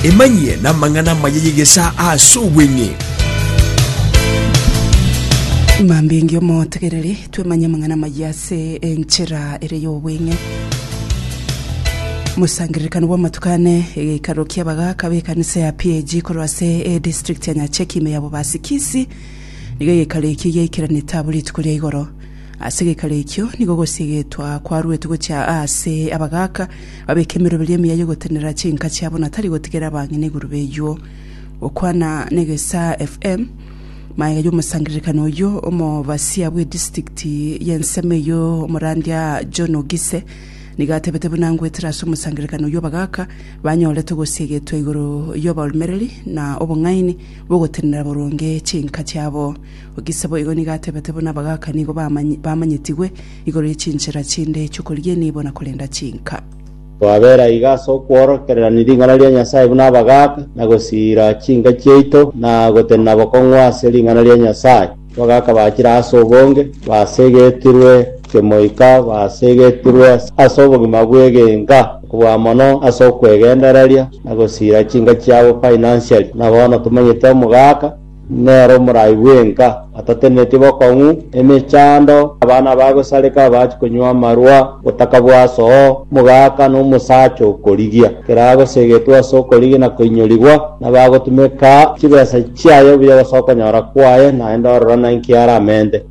emanyie namang'ana amaya y'egesaa ase obweng'e Mambia engi omotegereri twemanye amang'ana amaya ase enchera ere y'obweng'e mosangererekano bw'amatuko ane egeikaro ki'abagaka b'ekanisa ya PAG korwa ase edistrict ya Nyacheki ime ya Bobasi Kisii nigo egeikaro ekio giaikeranete abo rituko ria igoro Ase gekara ekio nigo gosiegetwa kwaruetwe gochia aase abagaaka babeke emeroberi emiya y'ogotenenera chinka chiabo na tari gotigera abang'ina igoro b'eyuo. Gokwana n'egesaa FM, maega y'omosangererekani oyio omobasia bw'edistrikti y'ensemo eyio omorandia John Ogise nigo atebete buna ngoetera ase omosangererekani oyio abagaaka banyorete ogosiegetwa igoro y'oborumereri na obong'aini bw'ogotenenera boronge chinka chiabo. Gose boigo nigo atebete buna abagaaka nigo bamanyetigwe igoro ye chinchera chinde chi'okorigia enibo na korenda chinka. Twabera iga ase okworokereraniri ring'ana ria Nyasae buna abagaaka, na gosiira chinka chiaito, na gotenena bokong'u ase ring'ana ria Nyasae. Abagaaka bachire ase obonge, basegetirwe kemoika, basegetirwe ase obogima bw'egenka, okobua mono ase okwegendereria, na gosiira chinka chiabo financially. Buna bono tomanyete omogaaka, Nere omorai bwenka atatenenetie bokong'u, emechando, abana abagosareka abache konywa amarwa, botaka bwasoo, omogaka, na omosacha okorigia. Kera agosegetwe ase okorigia na koinyorigwa, nabagotumeka chibesa chiaye buya gose okonyora kwaye, naende ororo nainki aramente.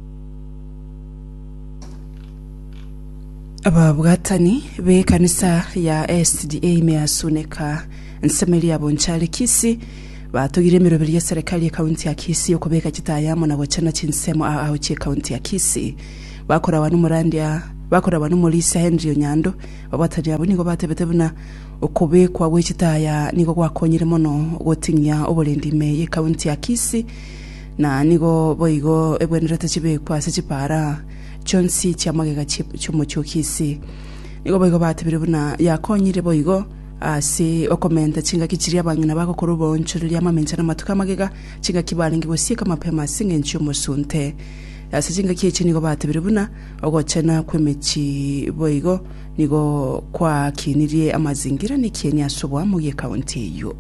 Ababwatani b'ekanisa ya SDA Measuneka Nsemelia Bonchalekisi Batogire emeroberi ye Serikali ye County ya Kisii okobeka chitaaya amo na gochana chinsemo aa ao chie County ya Kisii. Bakoragwa n'omorandia bakoragwa n'omorisia Henry Onyando, babatani abwo nigo batebete buna okobekwa gwe chitaaya aa nigo gwakonyire mono goting'ia oborendi ime ye County ya Kisii na nigo boigo ebwenerete chibekwa ase chipaara chionsi chia magega chie chiomochie o Kisii. Nigo boigo batebire buna yakonyire boigo Ase okomenta chingaki chiria abang'ina bagokora oboonchoreria, amamencho na amatuko 'amagega, chingaki barenge gosieka mapema ase engencho y'omosunte. Ase chingaki echi nigo batebire buna ogochena kw'emechi boigo nigo kwaakinirie amazingira n'ekieni ase oboamo bw'ekaunti eyio.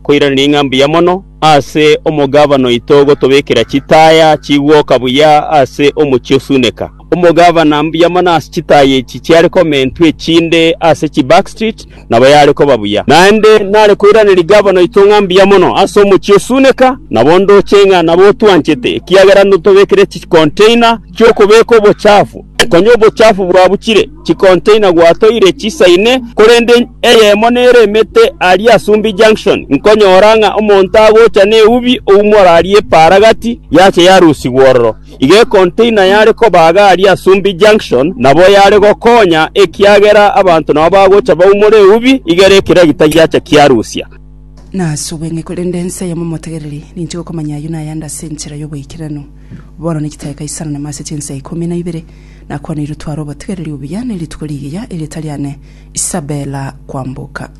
Koiraneria ng'a mbuya mono ase omogabana oito gotobekera chitaaya chigwoka buya ase omochie osuneka. Omogavana mbuya mono ase chitaaya echi chiare komentwa echinde ase chiback street, nabo yare koba buya. Naende nare koiraneria gavana oito ng'a mbuya mono ase omochie o Suneka, nabo ndoche ng'a nabo otwanchete, ekiagera notobekire chikonteina chi'okobeka obochafu. Konya obochafu bwabuchire, chikonteina gwatoire chisa ine, korende eyemo nere emete aria Asumbi Junction, nkonyora ng'a omonto agocha neubi oumora aria epaara gati, yacha yarusigwa ororo. Iga ekontaina yare kobaga aria Asumbi Junction nabo yare gokonya, ekiagera abanto nabo bagocha baumore eubi igere ekero egita giacha kiarusia. Nasubwe ng'e korende ense eye momotegereri, ninche gokomanya ayio na ayande ase enchera y'oboikeranu. Bono nechitae kaisaranamu ase chinsa ikomi na ibere, nakwanirie tware obotegereri obuya ne rituko rigiya, erio tari ane Isabella kwamboka.